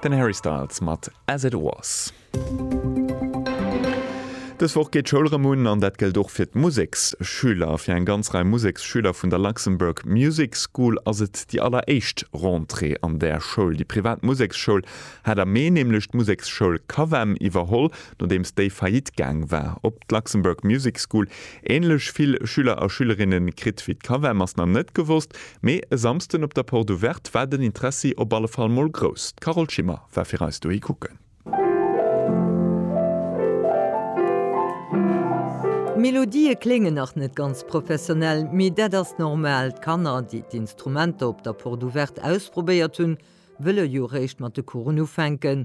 Den Harry Styles mat As It Was. Dës Woch geet d'Schoul rëm un an dat gëllt och fir d'Museksschüler. Fir eng ganz Rei Museksschüler vun der Luxembourg Music School ass et déi alleréischt Rentrée an där Schoul. Déi privat Museksschoul hat am Mee nämlech d'Museksschoul Cavem iwwerholl, nodeems déi faillite gaang war. Ob d'Luxembourg Music School änlech vill Schüler a Schülerinne kritt wéi d'Cavem ass nach net gewosst. Mee e Samsden op der Porte Ouverte war den Interessi op alle Fall mol grouss. D'Carole Schimmer war fir eis dohi kucken. D'Melodië kléngen nach net ganz professionell, mee dat ass normal. D'Kanner, déi d'Instrumenter op der Porte Ouverte ausprobéiert hunn, wëlle jo réischt mat de Coursen ufänken.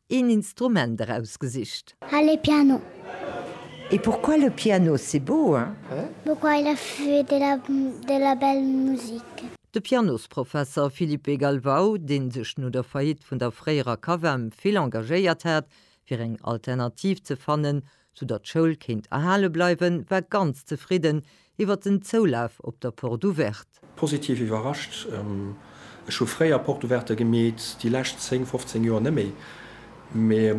Een Instrument erausgesicht. Allez piano! Et pourquoi le piano c'est beau hein? Pourquoi il a fait de la de la belle musique? De Pianosprofesser Filipe Galvao, dee sech no der Faillite vun der fréierer CAVEM vill engagéiert hat, fir eng Alternativ ze fannen, sou datt d'Schoul kéint erhale bleiwen, war ganz zefridden iwwert den Zoulaf op der Porte Ouverte. Positiv iwwerrascht, ech hu fréier Porte Ouverte gemeet, déi lescht 10, 15 Joer net méi, mee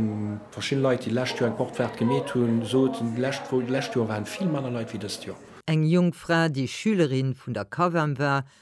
verschidden Leit déi d'lescht Joer eng Porte Verte gemeet hunn, soten d'lescht Joer waren vill manner Leit wéi dëst Joer. Eng jonk Fra, déi Schülerin vun der Cav'em war,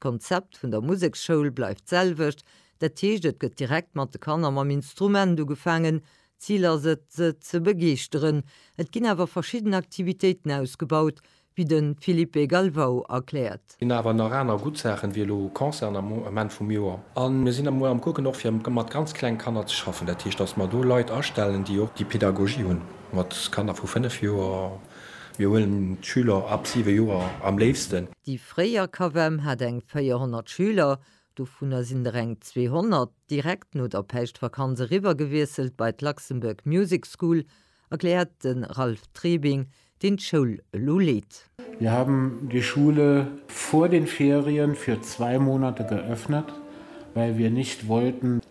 D'Konzept vun der Museksschoul bleift d'selwecht, dat heescht et gëtt direkt mat de Kanner mam Instrument ugefaangen. D'Zil ass et, se ze begeeschteren. Et ginn awer verschidden Aktivitéiten ausgebaut, wéi de Filipe Galvao erkläert. Mir hunn awer nach aner gutt Saachen, wéi elo Concerten am Ament vum Joer. A mir sinn emol am Kucken och fir mat ganz kleng Kanner ze schaffen, dat heescht, datt mer do Leit astellen, déi och déi Pedagogie hunn mat Kanner vu fënnef Joer. Mir huelen d'Schüler ab siwe Joer am léifsten. Déi fréier CAVEM hat eng 400 Schüler, dovunner sinn der eng 200 direkt no der Päischtvakanz eriwwergewiesselt bei d'Luxembourg Music School, erkläert de Ralph Trebing, deen d'Schoul elo leet. Wir haben die Schule vor den Ferien für zwei Monate geöffnet, well wir nicht wollten,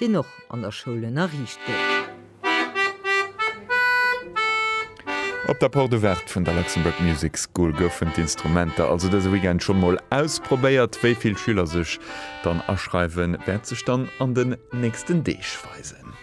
deen och an der Schoul ënnerriicht gëtt. Op der Porte Ouverte vun der Luxembourg Music School goufen d'Instrumenter also dëse Weekend schonn mol ausprobéiert. Wéi vill Schüler sech dann aschreiwen, wäert sech dann an den nächsten Deeg weisen.